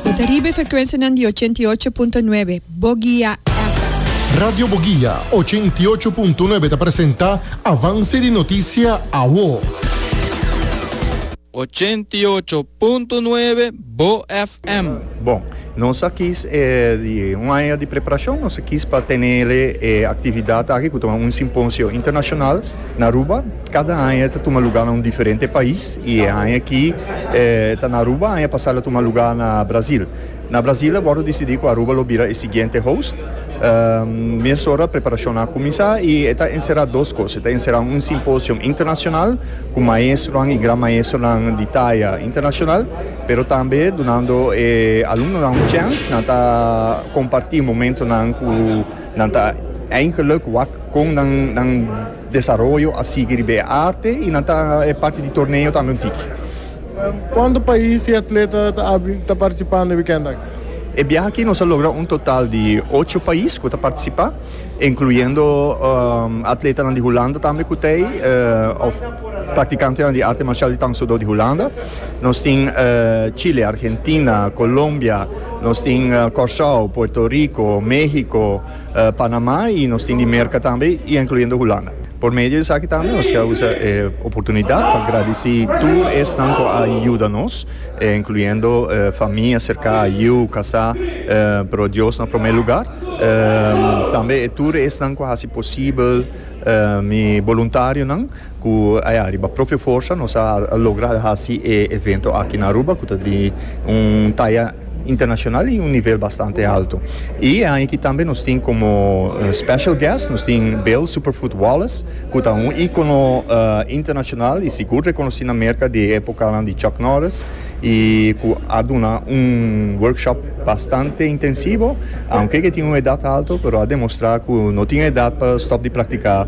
Bo ta riba e ferkuensianan di ochenta i ocho punto nuebe Bogia FM. Radio Bogia ochenta i ocho punto nuebe ta presenta Avanse di Noticia Awo. Ochenta i ocho punto nuebe Bo FM. Bon, nos a kis e di un aña di preparashon, nos a kis pa tenele e aktividat aki ku ta un simposio internashonal na Aruba. Kada aña e ta tuma lugá na un diferente pais i e aña aki e ta na Aruba, aña pasá el a tuma lugá na Brazil. Na Brazil a wòrdu disidí ku Aruba lo bira e siguiente host. Mesora preparashonnan a kuminsá i e ta enserá dos kos. E ta enserá un simposium internashonal ku maestronan i gran maestronan di taya internashonal, pero tambe dunando e alumnonan un chèns nan ta kompartí momentonan ku nan ta eingeluk wak kon nan. Desaroyo a sigui riba e arte y nan ta e parti di torneo tambe un tiki. Cuanto pais y atleta ta participa na e weekend aki? E biaha aki nos a logra un total di ocho pais cu ta participa, incluyendo atletanan di Hulanda tambe cu ta ey, of practicantenan di arte marcial di Tang Soo Do di Hulanda. Nos tin Chile, Argentina, Colombia, nos tin Curaçao, Puerto Rico, Mexico, Panamá y nos tin di Merca tambe y incluyendo Hulanda. Por medio di esaki tambe nos ta usa e oportunidad pa gradici tur esnan cu a yuda nos, incluyendo famia cerca, yiu, casá, pero Dios na prome lugar. Tambe e tur esnan cu a haci posibel, mi boluntarionan. Cu aya, riba propio forsa nos a logra haci e evento aki na Aruba, cu ta di un taya internacional y un nivel bastante alto. Y e aña aki tambe nos tin como special guest, nos tin Bill Superfoot Wallace, cu ta un icono internacional y sigur reconoci na Merca di e epocanan di Chuck Norris y cu a duna un workshop bastante intensivo, aunke cu e tin un edad alto, pero a demostra cu no tin edad pa stop di practica.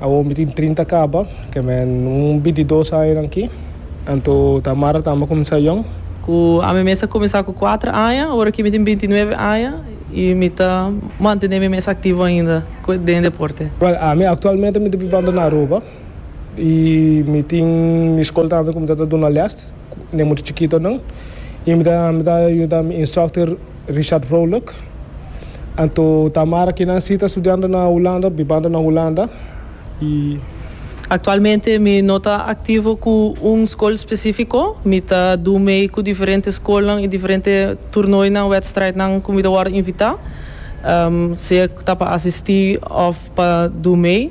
Awor mi tin trinta kaba, ke men un bintidos añanan aki. Anto ta Mara ta amba kuminsá yòn. Ku ami mes a kuminsá ku kuater aña, awor aki mi tin binti nuebe aña i mi ta mantené mi mes aktivo ainda ku den e deporte. Wèl, ami aktualmente mi ta bibando na Aruba i mi tin mi skol tambe ku mi ta ta duna lès den mucha chikitonan i mi ta yuda mi instrukter. Richard Vrolijk. Anto Tamara kinan si ta studiando na Hulanda, bibando na Hulanda y. Actualmente mi no ta activo cu un school specifico, mi ta doe mee cu diferente schoolnan y diferente toernooinan, wedstrijdnan cu mi ta worde invita, sea ta pa asisti of pa doe mee.